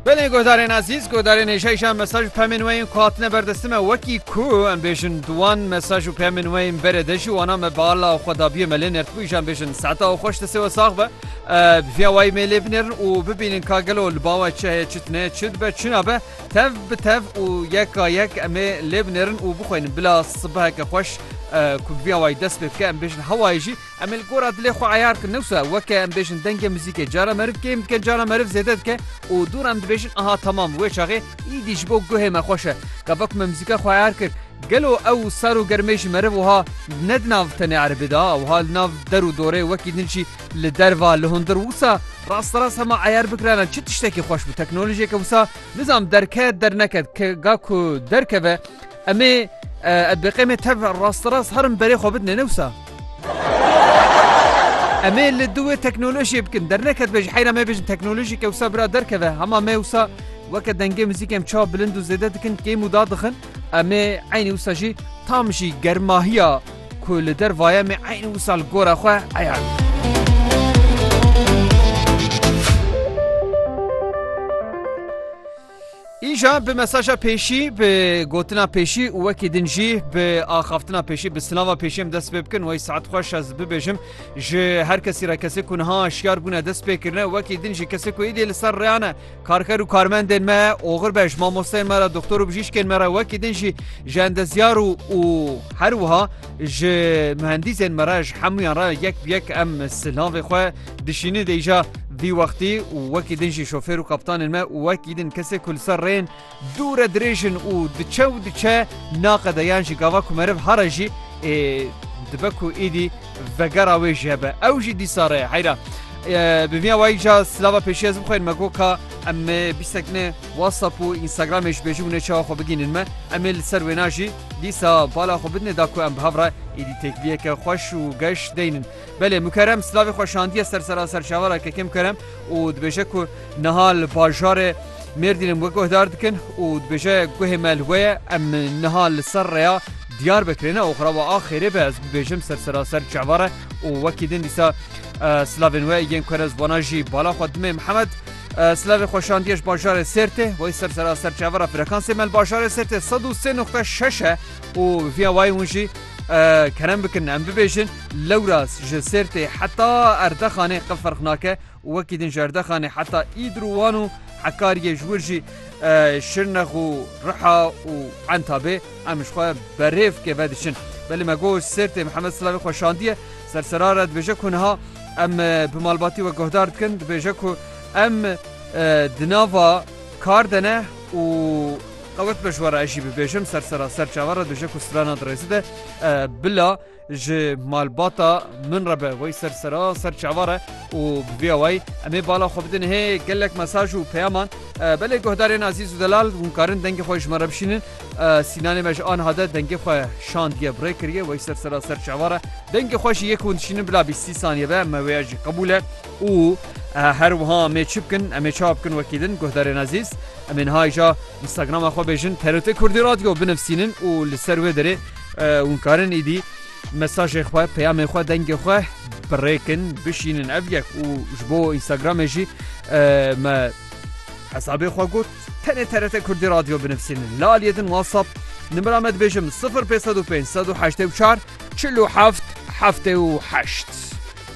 Belê guhdarên ezîz guhdarên hêşayîşa mesaj û pemên weyên ku hatine berdestime wekî ku em bêjin diwan mesaj û pemên weyên berê de jî wana me bala xwe dabiye me lê nertbû îjan bêjin seta û xweş destê we sax be biviya wayî mê lê binêrin û bibînin ka gelo li bawe çi heye çi tune çi dibe çina be tev bi tev û yeka yek emê lê binêrin û bixweynin bila sibeheke xweş ku biviya wayî dest pê bike em bêjin hewayê jî Em ê li gora dilê xwe eyar bikin. Newsa weke em bêjin dengê muzîkê cara meriv kêm dike, cara meriv zêde dike û dûr em dibêjin aha temam wê çaxê îdî ji bo guhê me xweş e. Gava ku me muzîka xwe eyar kir gelo ew sar û germê ji meriv wiha ne di nav tenê erebê de wiha li nav der û dorê wekî din jî li derva li hundir wisa rasterast hema eyar bikirane çi tiştekî xweş bû teknolojiyeke wisa nizam derket derneket ga ku derkeve Em ê edbeqêmê tev rasterast herin berê xwe bidinê, ne wisa? Em ê li duwê teknolojiyê bikin. Derneket be ji heyra me bêjin teknolojî ke wisa bira derkeve. Hema me wisa weke dengê muzîkê em çawa bilind û zêde dikin, kêm û da dixin. Em ê eynî wisa jî tam jî germahiya ku li der vaye em ê eynî wisa li gora xwe heya wî. Îja bi mesaja pêşî bi gotina pêşî û wekî din jî bi axaftina pêşî bi silava pêşî em dest pê bikin wey saet xweş ez bibêjim ji her kesî re kesê ku niha şiyar bûne dest pê kirine wekî din jî kesê ku êdî li ser reyane karker û karmendên me oxir be ji mamosteyên me re doktor û bijîşkên me re wekî din jî ji endezyar û û her wiha ji mühendîsên me re ji hemûyan re yek bi yek em silavê xwe Dişînin vê îşa vî wextî û wekî din jî şofêr û kaptanên me û wekî din kesê ku li ser rê yên dûr e dirêj in û diçe û diçe naqede yan jî gava ku meriv here jî ê dibe ku êdî vegera wê jî hebe ew jî dîsa re ye heyra Bi vîya wayî ca silava pêşî ez bixweynim me got ka em bîstek ne whatsapp û instagramê ji bêjin û ne çawa xwe bigînin me em ê li ser wêna jî dîsa bala xwe bidine da ku em bi hev re êdî têkiliyeke xweş û geş deynin. Belê Mukerem silavê xwe şandiye ser sera serçavara KK Mukerem û dibêje ku niha li bajarê Mêrdînê we guhdar dikin û dibêje guhê me li we ye, em niha li ser rêya Diyarbekirê ne oxira we a xêrê be ez bibêjim ser sera serçava re û wekî din dîsa silavên we yên ku ez wana jî bala xwe dimê Mihemed silavê xwe şandiye ji bajarê Sêrtê wey ser sera serçava re frekansê me li bajarê Sêrtê sed û sê nuqte şeş e û viya wayê hûn jî Kerem bikin em bibêjin lewras ji Sêrtê heta Erdexanê qe ferq nake û wekî din ji Erdexanê heta Îdir û Wan û Hekariyê ji wir jî Şirnex û Riha û Entabê em ji xwe berêv keve diçin. Belê me got Sêrtê Mihemed Silavê xwe şandiye ser sera re dibêje ku niha em bi malbatî we guhdar dikin dibêje ku em di nava kar de ne û Qewet be ji we re ez jî bibêjim ser seraser çawa re dije ku strana di rêzi de bila ji malbata min re be wey ser seraser çawa re û bi vê awayî em ê bala xwe bidin hê gelek mesaj û peyaman belê guhdarên azîz û delal hûn karin dengê xwe ji me re bişînin sînanê me ji aniha de dengê xwe şandiye bi rê kiriye wey ser seraser çawa re dengê xwe jî yek hûn dişînin bila bîstî saniye be me wê ya jî qebûl e. Û her wiha em ê çi bikin, em ê ça bikin wekî din guhdarên ezîz, em ê niha îja Instagrama xwe bêjin TRT Kurdî Radio binivîsînin û li ser wê derê hûn karin îdî mesajê xwe, peyamê xwe, dengê xwe birêkin, bişînin ev yek û ji bo Instagramê jî me hesabê xwe got tenê TRT Kurdî Radio binivîsînin. Li aliyê din WhatsApp nimira me dibêjim 0505 184 47 78.